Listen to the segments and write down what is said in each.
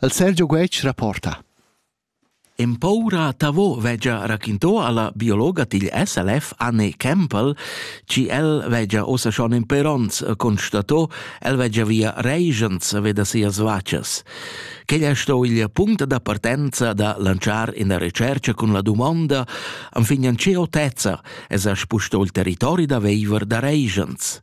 El Sergio Guetg rapporta. Empaura tavo vegia raquinto alla biologa digl SLF Anne Campbell, ci el vegia ossa schon in peronz constato, el vegia via regents veda sias vacas. Quel è sto il punct da partenza da lanciar in recerca con la domanda, anfignan ce otezza, es a spusto il territori da veiver da regents.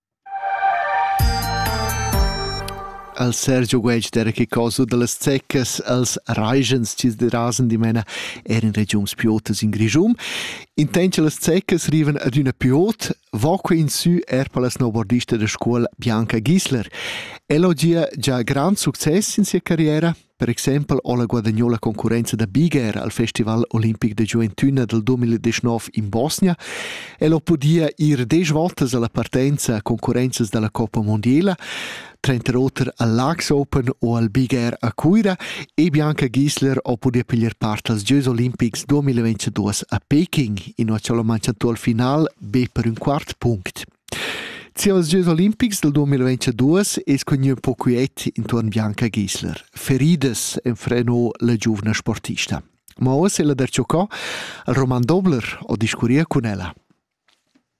al Sergio Guetg d'era che cosa da las zeccas als raigents chi derasan dimena er in regiuns piotas in Grischum. Intent che las zeccas rivan ad üna piot, va que in sü er per la snowboardista da scuola Bianca Gisler. Ella ho gia già grand success in sia carriera. Per exempel ha la guadagnà la concurrenza da Bigher al Festival olimpic da giuventüna dal 2019 in Bosnia. El ha podia ir desch votas alla partenza a concurrenzas dalla Coppa Mondiela, tranter oter al Lux Open o al Bigher a Cuira e Bianca Gisler ha podia piglier part als Gieus olimpics 2022 a Peking, inua c'è la manchia al final be per un quart punct. Sias gieus olimpics dal 2022 es cugnuo ün po quiet intuorn Bianca Gisler. Feridas enfreno la giuvna sportista. Ma oz ella darcho co al Roman Dobler ho discurria cun ella.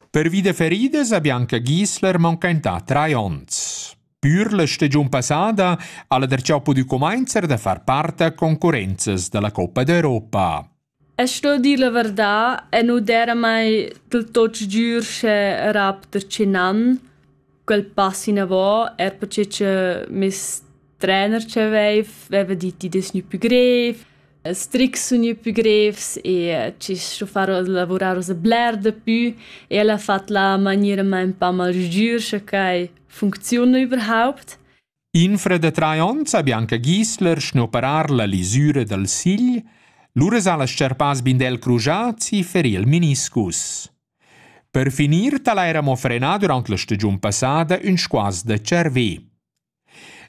Pervi da feridas ha Bianca Gisler mancaintà trai ons. Pür la stagiun passada ha la darchà pudü cumainzer da far part a concurrenzas da la Coppa d'Europa. E sto dir la varda e nu d'eira mai del tot sgür sche era per che nan quel pass inavò eir perche cha meis trener chi avaiv vaiva dit chi'd es gnü pü grev, ils trics sun gnü pü grevs e chi sto far lavurar oza bler dapü e el ha fat la maniera ma ün pa mal sgür scha quai funcziuna überhaupt. Infra da trais onns ha Bianca Gisler schnoperar la lisura dal sigl, lura s'ha las scerpas Bindel Crujazzi feril meniscus. Per finir tal eira mo frenà durant la stagiun passada ün squas da cervè.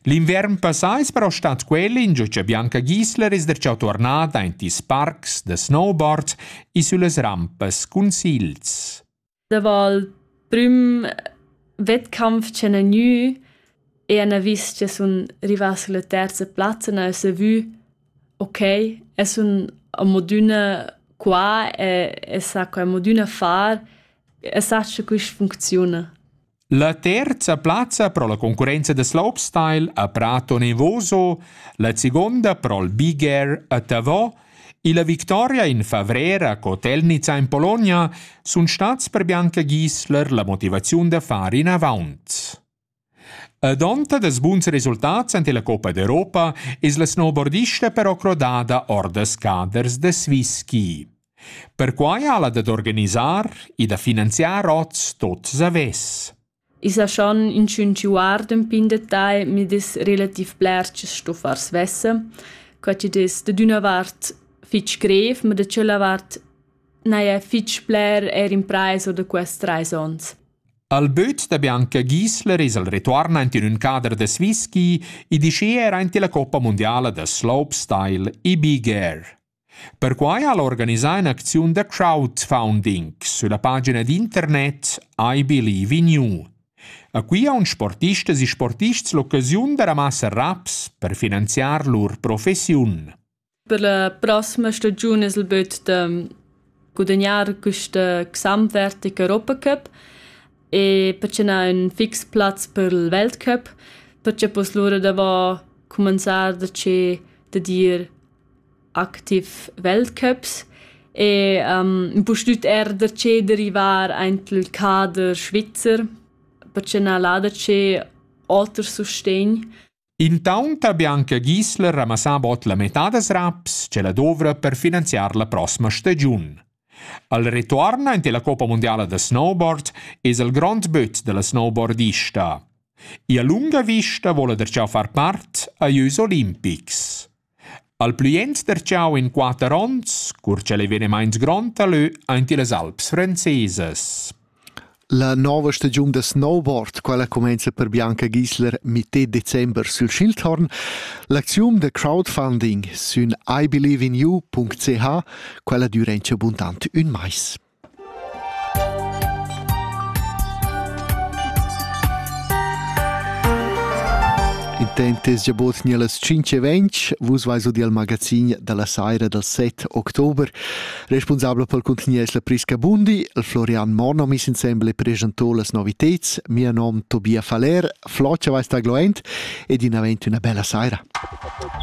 L'inviern passà es però stat quel ingio cha Bianca Gisler es darcheu tornada aint ils parcs da snowboard e süllas rampas cun sigls. Davo il prüm wettkampf ch'han gnü e han vis cha sun rivats sulla terza plazza, n'ha esa vü okay, es sun amodüna qua e e sà quai amodüna far e sach cha quist funcziuna. La terza plazza pro la concurrenza da slopestyle a Prato Nevoso, la segonda pro'l Big Air a Tavò e la victoria in favrer a Kotelnica in Polonia sun stats per Bianca Giesler la motivaziun da far inavant. A donta dels buns resultats ante la Coppa d'Europa es la snowboardista però crodada or das caders da Swiss Ski. Perquai ha'la dad organisar e da finanziar hoz tuot savess. I sa schon inchün chi guarda ün pin detagl, mi dess relativ bler chi sto far svesse. Qua chi'd es dad üna vart fich grev, ma da tschella vart n'haja fich bler eir imprais da quest trais ons. Al böt da Bianca Giesler es el retuorn aint in ün cader da Swiss ski e dischea eir aint illa Coppa mundiala da slopestyle e big air. Perquai ha el organisà in'acziun da crowdfunding sülla pagina d'internet iBelieveInU. A qui haun sportistas e sportists l'occasiun da ramassar raps per finanziar lur professiun. Per la prossima stagiun es il büt da gudagnar quista gesamtwertige Europacup e perche n'ha ün fix plaz per il Weltcup, perche poss lura davo cumanzar da che da dir activ Weltcups e ün pustüt eir da che derivar aint il cader svizzer perche na là da che oter sustegn. Intaunt ha Bianca Gisler ramassà bod la metà das raps ch'ella dovra per finanziar la prossima stagiun. Al retuorn aint la Coppa mundiala da snowboard es il grond böt da la snowboardista. Ia lunga vista voula darcheu far part a jeux olimpics. Al plü jent darcheu in quatter ons, cur ch'el ei venimaint grond dalö aint illas Alps franzesas. La nova stagiun da snowboard, quella cumainza per Bianca Gisler mitté december sül Schildhorn. L'acziun da crowdfunding sün iBelieveInYou.ch quella dürentscha buntant ün mais. Il temp es già bod gnir las tschinch e ventg. Vus vais udi al magazin da la saira dal 7 october. Responsabel pel contigner es la Prisca Bundi. Il Florian Monno mis insembel e presento las noviteds. Mia nom Tobia Faller. Flocia vais tagloent ed in avent üna bella saira.